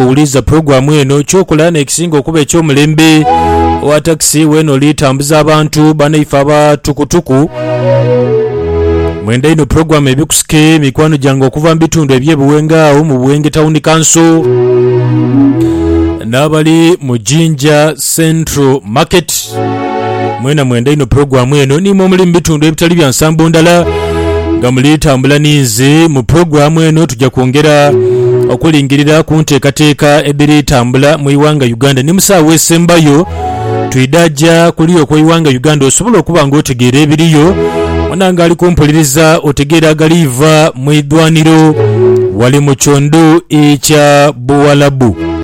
Owuliriza pulogulaamu eno, ky'okola n'ekisinga okuba eky'omulembe. Owa takisi, weena oli tambuza abantu, banaife aba tukutuku. Mwenda inho pulogulaamu Ebikusike, mikwano gyange okuva mu bitundu eby'e Buwenge agho mu Buwenge Tawuni Kanso n'abali mu Jinja Central Market. Mwena mwenda inho pulogulaamu eno ni mwe muli mu bitundu ebitali bya nsambo ndala nga muli tambula ni nze. Mu pulogulaamu eno tuja kwongera okulingirira ku nteekateeka edhiri tambula mu ighanga Uganda ni mu saagho esembayo twidha ja kuli okw'eighanga Uganda osobole okuba nga otegeera ebiriyo wona nga ali kumpuliriza otegeere agaliiva mu idhwaniro wali mu kiondhu ekya Buwalabu.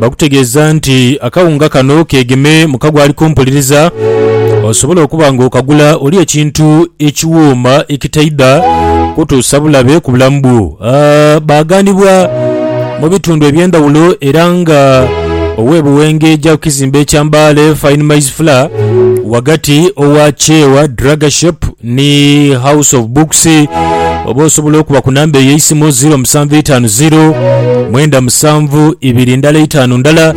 Bakutegeeza nti akawunga kano keegeme mu kago ali kumpuliriza osobola okuba ng'okagula oli ekintu ekiwooma ekitaidha kutuusa bulabe ku bulamu bwo. Ah, baaghanibwa mu bitundu eby'endhawulo era nga ow'e Buwengeja ku kizimbe kya Mbale Fine Maize Flour, ghagati owa Chewa Draga Shop Ni house of books oba osobola okuba ku namba eyo eisimu 0750 mwenda musanvu ibiri ndala itaanu ndala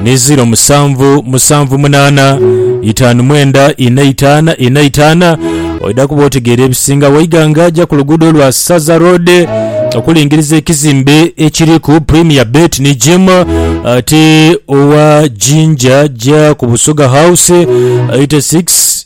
ni 07 musanvu munaana itaanu mwenda ina itaana ina itaana oidha kuba otegeera ebisinga waiganga aja ku luguudo lwa saza road okulingiriza ekizimbe ekiriku premier bet ni gym ate owa jinja ja ku busoga house 86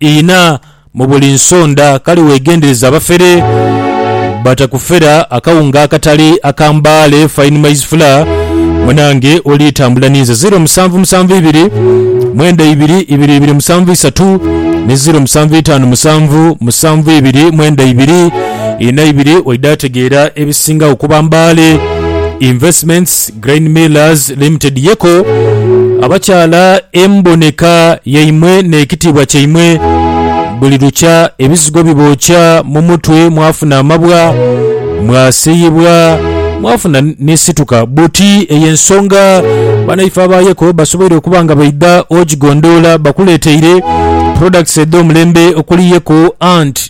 Inha mu buli nsonda, kale wegendereze abafere batakufera akawunga akatali aka mbaale, fine maize flour, munange olitambula ninze. Ziro musanvu musanvu ibiri mwenda ibiri ibiri ibiri musanvu isatu ni ziro musanvu itano musanvu musanvu ibiri mwenda ibiri inha ibiri oidha tegeera ebisingagho kuba mbaale investments. Grain Millers Limited Yeko abakyala emboneka yaimwe n'ekitiibwa kyaimwe buli lukya ebizigo bibookya mu mutwe mwafuna amabwa mwasiyibwa mwafuna n'esituka buti eyo ensonga banaife aba Yeko basoboire okuba nga baidha ogigondoola bakuleeteire products edh'omulembe okuli Yeko Ant